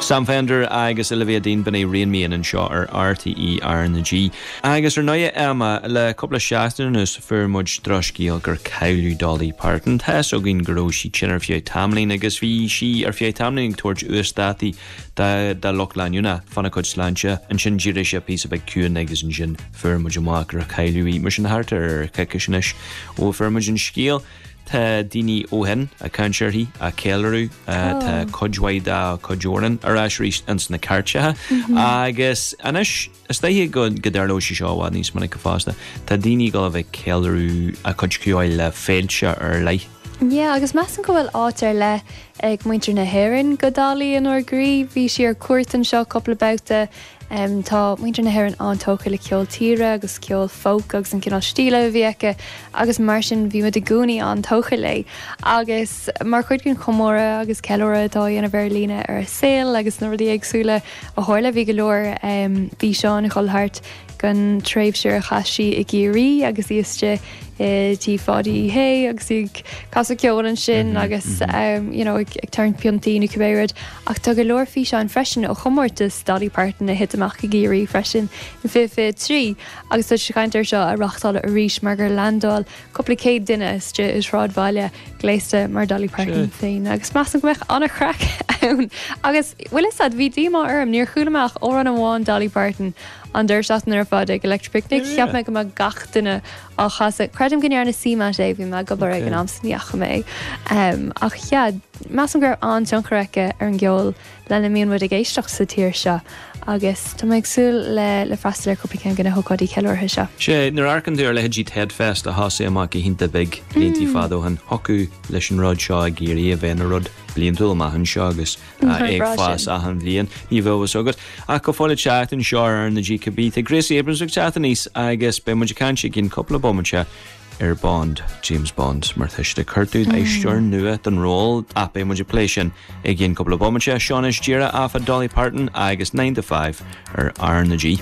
Sam Fender agus Olivia Dean b'in é Rein Me In anseo ar RTÉ RnaG. Agus ar ndóigh, Emma, le cúpla seachtain anuas fuair muid drochscéal gur cailleadh Dolly Parton. Tá's againn go raibh sí tinn ar feadh tamaillín agus bhí sí ar feadh tamaillín ag tabhairt uasdátaí dá lucht leanúna fana cuid sláinte. Ansin d'éirigh sé píosa beag ciúin agus ansin fuair muid amach gur cailleadh í. Mar sin thart ar coicis anois ó fuair muid an scéal. Tá daoine ó shin ag caint uirthi, á ceiliúradh, tá cuid mhaith dá cuid amhrán ar ais arís ins na cairteacha. Agus anois, is dóiche go dtarlóidh sé seo i bhfad níos minice fosta, tá daoine ag dul a bheith ag ceiliúradh a cuid ceoil le féilte ar leith. Yeah, agus measaim go bhfuil áit ar leith ag muintir na hÉireann do Dolly inár gcroí. Bhí sí ar cuairt anseo cúpla babhta. Tá muintir na hÉireann an-tógtha le ceol tíre agus ceol folk agus an cineál stíle a bhí aici agus mar sin bhí muid i gcónaí an-tógtha léi. Agus mar chuid den chomóradh agus ceiliúradh atá á dhéanamh ar líne ar a saol agus na rudaí éagsúla a tharla bhí go leor físeáin ag dul thart den tréimhse a chaith sí i gCiarraí agus í istigh i dTigh Pháidí Uí Shé agus í ag casadh ceoil ansin agus you know ag tarraingt piontaí nó cibé rud. Ach tá go leor físeáin freisin ó chomórtas Dolly Parton a thit amach i gCiarraí freisin in 2023 agus tá siad ag caint air seo a reáchtáil arís mar gur leaindeáil cúpla céad duine istigh i sráidbhaile gléasta mar Dolly Parton féin agus measaim go mbeadh an-chraic ann. Agus, bhfuil 'fhios a'd, bhí díomá orm, níor chuala mé ach amhrán amháin Dolly Parton An deireadh seachtaine ar fad ag Electric Picnic, cheap mé go mbeadh gach duine á chasadh. Creidim go ndearna CMAT é, bhí mé ag obair ag an am so ní fhaca mé é. Ach yeah, measaim go raibh an-tionchar aici ar an gceol lena mbíonn muid ag éisteacht sa tír seo agus tá mé ag súil le le freastal ar chúpla ceann de na hócáidí ceiliúrtha seo. Sea, nuair a amharcann tú ar leithéidí Tedfest a thosaigh amach go hiontach beag bliantaí fada ó shin, thiocfadh leis an rud seo éirí a bheith ina rud bliantúil amach anseo agus, Níor bhraith sin. Ag fás achan bhliain, ní bheidh fhios agat. Ach go fóill ag teacht aníos seo ar R na G cá bith, tá Gracie Abrams ag teacht aníos agus beidh muid ag caint i gcionn cúpla bomaite ar Bond, James Bond mar tá siad ag cuartú aisteoir nua don ról ach beidh muid ag plé sin i gcionn cúpla bomaite. Seo anois do rogha Emma, Dolly Parton agus Nine to Five ar R na G.